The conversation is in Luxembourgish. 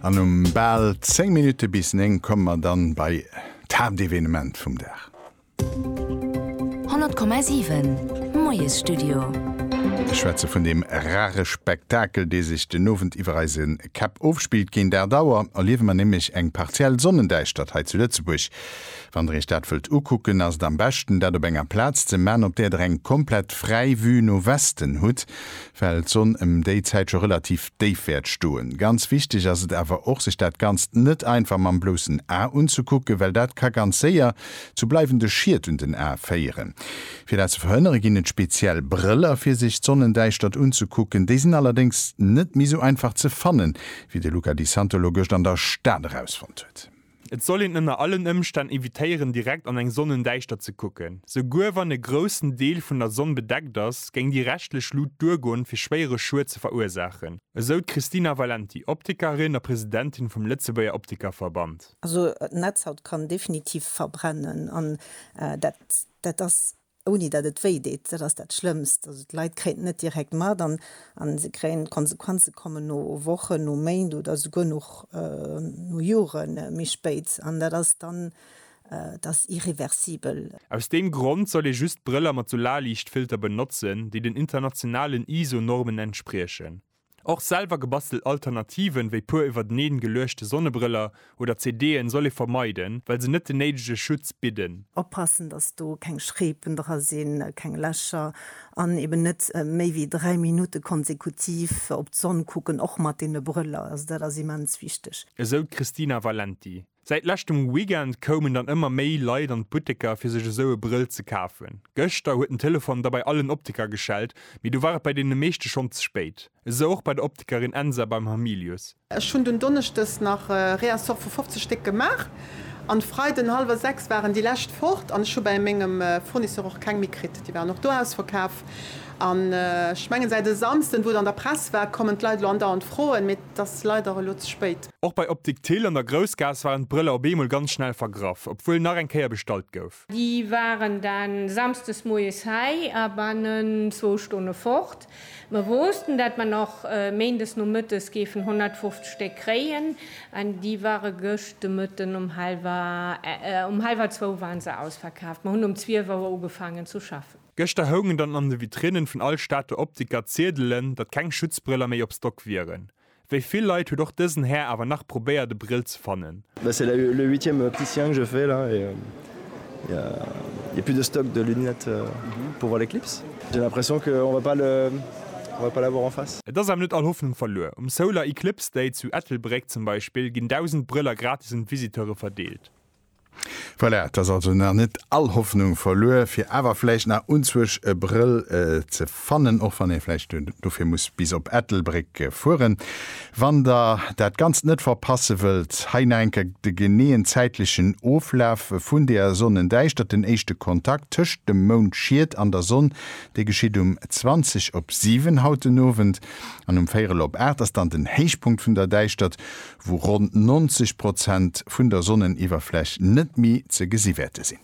An um bal 10 Minutte bis 9 komme mer dann bei d'Haaptevenement vum Dag. 100,7 Moiesstudio. Ech schwätze vun deem rare Spektakel, dee sech den Owend iwwer eise Käpp ofspillt. Géint 8 Auer erliewe mer nämlech eng partiell Sonnendäischtert hei zu Lëtzebuerg. Wann der iech dat wëllt ukucken, ass et am beschten, dat op enger Plaz ze man, op där der eng komplett fräi Vue no Westen hutt. well d'Sonn em déi Zäit scho relativ déif wäert stoen. Ganz wichteg ass et awer och, sech dat Ganzt net einfach mam bloussen A unzekucken, well dat ka ganz séier zu bleiwende Schied un den Ae féieren. Fir dat ze verhënnere ginn et speziell Brëller, fir sech d'Sonnendäischtert unzekucken. Déi sinn allerdéngs net méi sou einfach ze fannen, wéi de Luca Di Santolo gëscht an der Stad erausfonnt huet. Et soll een ënner allen Ëmstänn evitéieren direkt an eng Sonnendäischtert ze kucken. Souguer wann e groussen Deel vun der Sonn bedeckt ass, géing déi reschtlech Lut duergoen, fir schwéiere Schued ze verursaachen, esou d'Christina Valenti, Optikerin a Presidentin vum Lëtzebuerger Optikerverband. Also d'Netzhaut kann definitiv verbrennen an dat ass. ouni datt et wéi deet, dat ass dat Schlëmmst. Also d'Leit kréien et net direkt mat an se kréien d'Konsequenze kommen no Wochen, no Méint oder souguer nach no Jore méi spéit an dat ass dann, dat ass irreversibel. Aus deem Grond soll ee just Brëller mat sou Laliichtfilter benotzen, déi den internationalen ISO-Normen entspriechen. Och selwer gebastelt Alternativen, wéi puer iwwerteneen geluechte Sonnebrëller oder CD'en, soll ee vermeiden, well se net den néidege Schutz bidden. Oppassen, dass do keng Schreepen dra sinn, keng Lächer, an eben net méi wéi 3 Minutte konsekutiv op d'Sonn kucken, och mat deene Brëller. Also dat ass immens wichteg. Esou d'Christina Valenti. Säit leschtem Weekend koumen dann ëmmer méi Leit an d'Butteker fir sech esou e Brëll ze kafen. Gëschter huet den Telefon da bei allen Optiker geschellt, mee do war et bei deene meeschte schonn ze spéit. Esou och bei der Optikerin Ensa beim Hamilius. Ech hunn dunn donneschdes nach e Réassort vu 50 Stéck gemaach an de Freiden hallwer 6 waren déi lescht fort an ech hu bei mengem Fournisseur och keng méi kritt. Déi waren och do ausverkaf an ech mengen säit e Samsden, wou et an der Press war, kommen d'Leit elo andauernd froen. 't ass leider elo ze spéit. Och bei Optik Thill an der Groussgaass waren d'Brëller op eemol ganz schnell vergraff, obwuel nach eng Kéier bestallt gouf. Déi waren dann Samsdes moies hei a bannen zwou Stonne fort. Mer woussten, dat mer nach Méindes Nomëttes géifen 150 Stéck kréien, an déi ware gëscht de Mëtten um halwer, um halwer zwou waren se ausverkaaft. Mer hunn um zwielf Auer ugefaangen zu schaffen. Gëschter houngen dann an de Vitrinnen vun all Stater Optiker Ziedelen, datt keng Schutzbrëller méi op Stock wieren. Wéi vill Leit huet och dësen Här awer nach probéiert e Brill ze fannen. Et ass awer net all Hoffnung verluer. Um Solar Eclipse Day zu Ettelbréck zum Beispill ginn 1.000 Brëller gratis un d'Visiteure verdeelt. Voilà, et ass also nach net all Hoffnung verluer fir awer vläicht nach unzwuesch e Brëll ze fannen, och wann ee vläicht dofir muss bis op Ettelbréck fueren. Wann der dat Ganzt net verpasse wëllt, hei nach eng Kéier de geneeën zäitlechen Oflaf vun der Sonnendäischtert, den éischte Kontakt tëscht dem Moundschiet an der Sonn, dee geschitt um 20 op 7 haut den Owend, an um véierel op 8 ass dann den Héichpunkt vun der Däischtert, wou ronn 90 Prozent vun der Sonneniwwerfläch net méi ze gesi wäerte sinn.